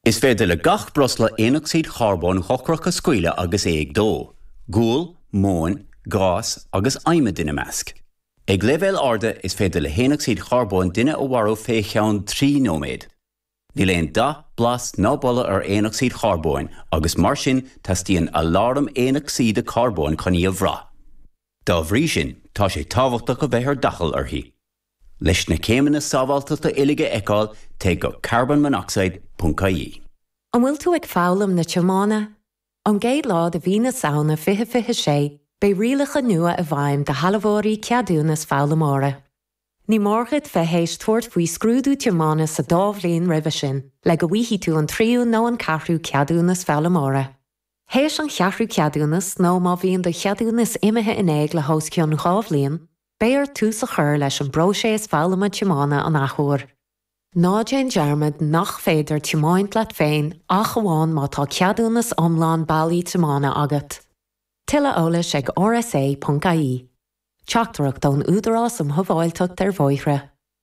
Is féidir le gach breosla aonocsaíd charbóin dhochrach a scaoileadh agus é ag dó, gual, móin, gás agus adhmad ina measc. Ag leibhéil arda is féidir le haonocsaíd charbóin duine a mharú fé cheann trí nóiméad. Níl aon dath, blas ná boladh ar aonocsaíd charbóin agus mar sin teastaíonn aláram aonocsaíde carbóin chun í a bhrath. Dá bhrí sin tá sé tábhachtach a bheith ar d'fhaichill uirthi. Leis na céimeanna sábháltachta uilig a fheiceáil, téigh go carbonmonoxide ponc ie. An bhfuil tú ag foghlaim na tiomána? Ón gcéad lá de mhí na Samhna 2026, beidh rialacha nua i bhfeidhm do shealbhóirí ceadúnas foghlaimeora. Ní mór dhuit bheith théis tabhairt faoi scrúdú tiomána sa dá bhliain roimhe sin le go bhfaighidh tú an tríú nó an ceathrú ceadúnas foghlaimeora. Théis an cheathrú ceadúnas, nó má bhíonn do cheadúnas imithe in éag le hós cionn dhá bhliain, Beidh ort tús a chur leis an bpróiséas foghlama tiomána an athuair. Ná déan dearmad nach féidir tiomáint leat féin ach amháin má tá ceadúnas iomlán bailí tiomána agat. Tuilleadh eolais ag rsa.ie. Teachtaireacht ón Údarás um Shábháilteacht ar Bhóithre.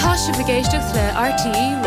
Tá sibh ag éisteacht le RTÉ Raidió na.